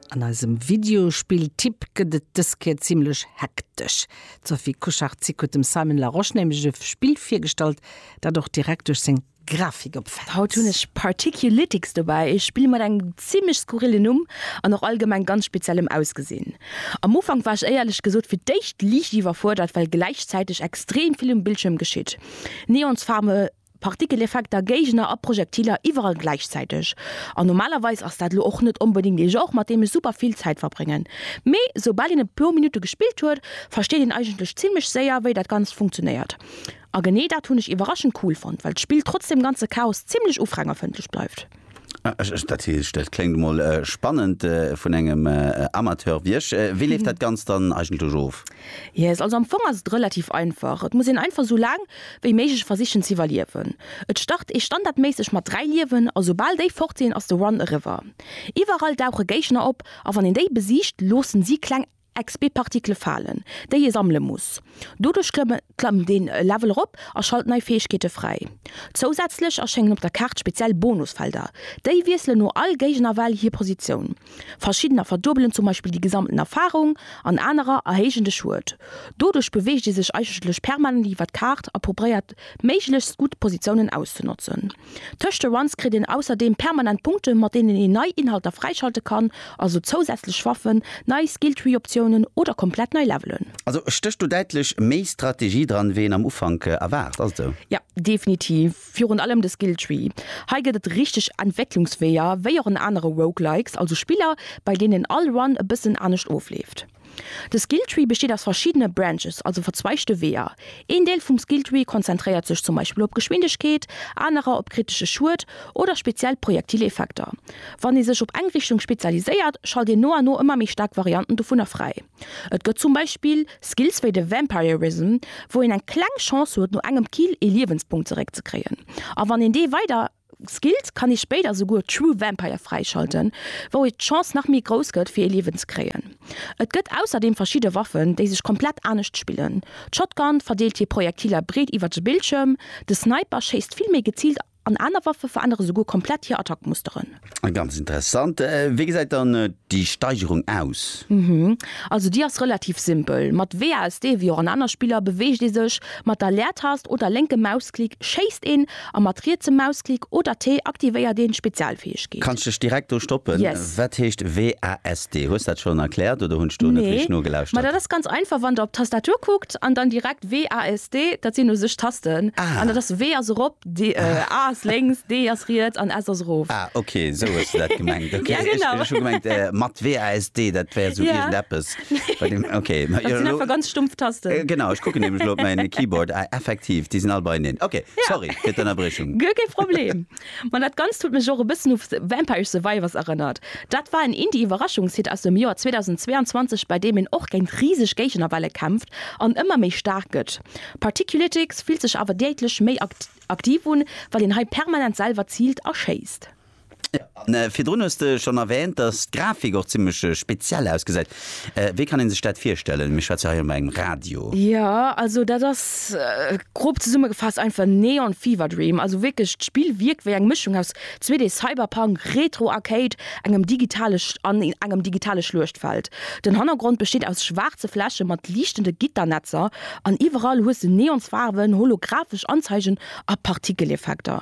An eisem Videospill-Tipp gëtt et dës Kéier zimmlech hektesch. D'Sophie Kuchartzik huet dem Simon Larosche nämlech e Spill virgestallt, dat och direkt duerch seng Grafik opfält. Haut hunn ech Particulytics dobäi, e Spill mat engem zimmlech skurrillen Numm an och allgemeng ganz speziellem Ausgesinn. Am Ufank war ech éierlech gesot fir d'éischt liicht iwwerfuerdert, well gläichzäiteg extrem vill um Bildschierm geschitt. Neonsfaarwe Partikeleffekter, Géigner a Projektiler iwwerall gläichzäiteg. An normalerweis ass dat lo och net onbedéngt ee Genre, mat deem ech super vill Zäit verbréngen. Mee soubal een e puer Minutte gespillt huet, versteet een eigentlech zimmlech séier, wéi dat Ganzt funktionéiert. A genee dat hunn ech iwwerraschend cool fonnt, well d'Spill trotz deem ganze Chaos zimmlech ufrängerfëndlech bleift. Dat dat kléngt emol spannend vun engem Amateur wéi ech. Wéi leeft dat Ganzt dann eigentlech of? Yes, also am Fong ass et relativ einfach. Et muss een einfach esou laang wéi méiglech versichen ze iwwerliewen. Et start ee standardméisseg mat 3 Liewen a soubal déi fort sinn ass de Run eriwwer. Iwwerall dauche Géigner op a wann een déi besiegt loossen si kleng XP-Partikele falen, déi ee sammele muss. Doduerch klëmmt een e Level erop a schalt nei Fäegkeete fräi. Zousätzlech erschéngen op der Kaart speziell Bonusfelder. Déi wiesselen no all Géignerwell hir Positioun. Verschiddener verduebelen zum Beispill déi gesammten Erfarung an anerer erhéijen de Schued. Doduerch beweegt ee sech eigentlech permanent iwwer d'Kaart a probéiert méiglechst gutt Positiounen auszenotzen. Tëscht de Runs kritt een ausserdeem permanent Punkte mat deenen een nei Inhalter fräischalte kann, also zousätzlech Waffen, nei Skilltree Optiounen oder komplett nei Levelen. Also stécht do däitlech méi Strategie dran wéi een am Ufank erwaart, ass et esou? Jo, definitiv, virun allem de Skilltree. Hei gëtt et richteg Entwécklungsweeër, wéi och an anere Roguelikes, also Spiller bei deenen all Run e bëssen anescht ofleeft. De Skilltree besteet aus verschiddene Branches, also verzweigte Weeër. Een Deel vum Skilltree konzentréiert sech zum Beispill op Geschwindegkeet, anerer op kritesche Schued oder speziell Projektileffekter. Wann ee sech op eng Richtung spezialiséiert, schalt een no an no ëmmer méi staark Varianten dovunner fräi. Et gëtt zum Beispill Skills wéi de Vampirism, wou een eng kleng Chance huet no engem Kill ee Liewenspunkt zeréckzekréien, a wann een dee weider. Skills kann ee spéider souguer True Vampire fräischalten, wou et d'Chance nach méi grouss gëtt fir ee Liewen ze kréien. Et gëtt ausserdeem verschidde Waffen, déi sech komplett anescht spillen. D'Shotgun verdeelt hir Projektiler breet iwwert de Bildschierm, de Sniper schéisst vill méi geziilt an aner Waffe verännere souguer komplett hir Attackmusteren. Ganz interessant. Wéi gesäit dann déi Steigerung aus? Also déi ass relativ simpel, mat WASD wéi och an aner Spiller beweegt ee sech. Mat der Leertast oder lénke Mausklick schéisst een A mat rietsem Mausklick oder T aktivéiert een d'Spezialfäegkeet. Kanns dech direkt do stoppen. Yes. Wat heescht WASD? Hues dat schon erklärt oder hunn ech do net Nee, richteg ma dat nogelauschtert? ass ganz einfach, wann der op d'Tastatur kuckt an dann direkt WASD, dat sinn u sech Tasten, Ah. an dat ass, W ass erop, D, A ass lénks, D ass riets an S ass erof. Ah, okay, esou hues de dat gemengt. Okay, Ja, ech, genau. ech hu gemengt, mat WASD, dat wär esou Ja. iergendeppes. Bei dem, okay. Dat sinn einfach ganz stumpf Tasten. Genau, ech kucken nämlech elo op mäin Keyboard. Ah, effektiv, déi sinn all beieneen. Okay, sorry fir d'Ënnerbrechung. Guer kee Problem. Ma dat Ganzt huet mech och e bëssen u Vampire Survivors erënnert. Dat war en Indie-Iwwerraschungshit aus dem Joer 2022, bei deem een och géint riseg Géignerwelle kämpft an ëmmer méi staark gëtt. Particulitics fillt sech awer däitlech méi aktiv un, well een hei permanent selwer ziilt a schéisst. An virdrun hues de schonn erwähnt, dass d'Grafik och zimmlech speziell ausgesäit. Wéi kann een sech dat virstellen? Mir schwätze hei op engem Radio. Jo, also dat ass, grob zesummegefaasst, einfach Neon Fever Dream. Also wierklech, d'Spill wierkt wéi eng Mëschung aus 2D Cyberpunk, Retro Arcade, engem digitale an engem digitale Schluechtfeld. Den Hannergrond besteet aus schwaarze Fläche mat liichtende Gitternetzer an iwwerall hues de Neonsfaarwen, holographesch Anzeigen a Partikeleffekter.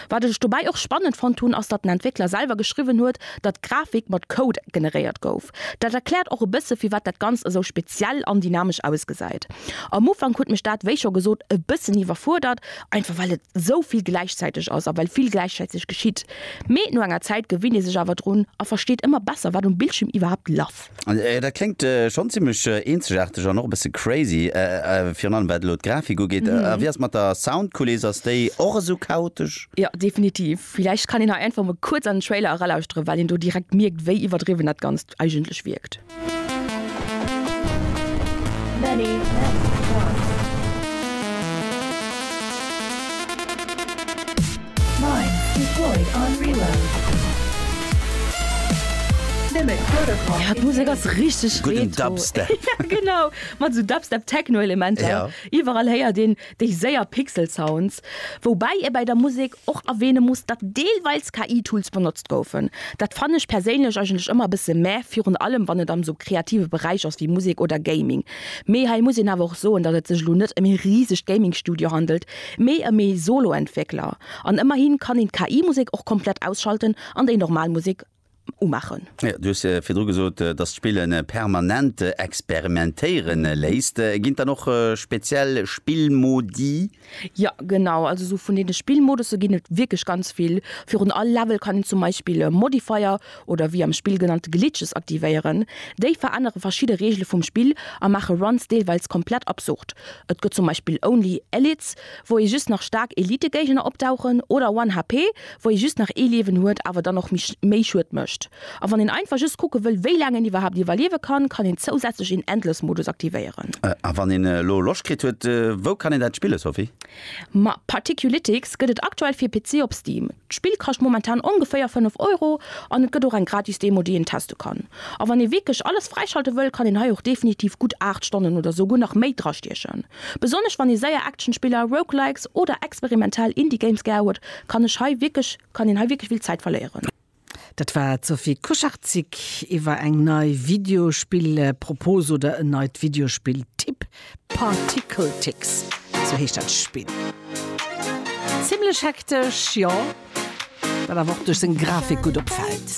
Wat ech dobäi och spannend fonnt hunn, ass datt den Entwéckler selwer geschriwwen huet, datt d'Grafik mat Code generéiert gouf. Dat erkläert och e bësse firwat dat Ganzt esou speziell an dynamesch ausgesäit. Am Ufank huet mech dat, wéi scho gesot, e bëssen iwwerfuerdert, einfach well et esou vill gläichzäiteg ass a well vill gläichzäiteg geschitt. Mee no enger Zäit gewinnt ee sech awer drun a versteet ëmmer besser wat um Bildschierm iwwerhaapt laff. Dat kléngt schonn zimmlech eenzegaarteg an och e bësse crazy, virun allem wat elo d'Grafik ugeet. A wéi ass et mat der Soundkuliss, ass déi och esou chaotesch? Jo, definitiv. Villäicht kann een hei einfach mol kuerz an den Trailer eralauschteren, well een do direkt mierkt, wéi iwwerdriwwen dat Ganzt eigentlech wierkt. Mine, Deploy on Reload. Limit Protocol. Ja, d'Musek ass richteg Gudden Retro. Dubstep. Ja, genau, mat esou Dubstep-Techno-Elementer. Ja. Iwwerall héiert een déi séier Pixel-Sounds. Woubäi ee bäi der Musek och erwähne muss, datt deelweils KI-Tools benotzt goufen. Dat fannen ech perséinlech eigentlech ëmmer e bësse mäh, virun allem wann et am esou kreative Beräich ass wéi Musek oder Gaming. Mee hei muss een awer och soen, datt et sech elo net ëm ee risegt Gaming-Studio handelt, Méi a méi Solo-Entwéckler, an ëmmerhin kann een d'KI-Musek och komplett ausschalten an déi normal Musek umaachen. Jo, du hues virdru gesot, dass d'Spille permanent experimentéiere léisst. Ginn et dann och speziell Spillmodi? Jo, genau. Also sou vun deene Spillmodusse ginn et wierklech ganz vill. Virun all Level kann een zum Beispill e Modifier oder wéi am Spill genannt Glitches aktivéieren. Déi verännere verschidde Reegele vum Spill a maache Runs deelweils komplett absurd. Et gëtt zum Beispill Only Elites, wou ee just nach staark Elite-Géigner opdauchen, oder One HP, wou ee just nach ee Liewen huet, awer dann och méi Schued mécht. A wann een einfach just kucke wëll, wéi laang een iwwerhaapt iwwerliewe kann, kann een zousätzlech een Endless-Modus aktivéieren. A wann een elo Loscht kritt huet, wou kann een dat spillen, Sophie? Ma Particulytics gëtt et aktuell fir PC op Steam. D'Spill kascht momentan ongeféier 5 Euro an et gëtt och eng gratis Demo déi een teste kann. A wann ee wierklech alles fräischalte wëll, kann een hei och definitiv gutt 8 Stonnen oder souguer nach méi drastiechen. Besonnesch wann ee séier Actionspiller, Roguelikes oder experimentell Indie Games gär huet, kann ech hei wierklech kann een hei wierklech vill Zäit verléieren. Dat war d'Sophie Kucharczyk iwwer eng nei Videospill-Propose oder en neit Videospill-Tipp, Particle Ticks, sou heescht dat Spill. Zimlech hektesch, jo, wat awer och duerch seng Grafik gutt opfält.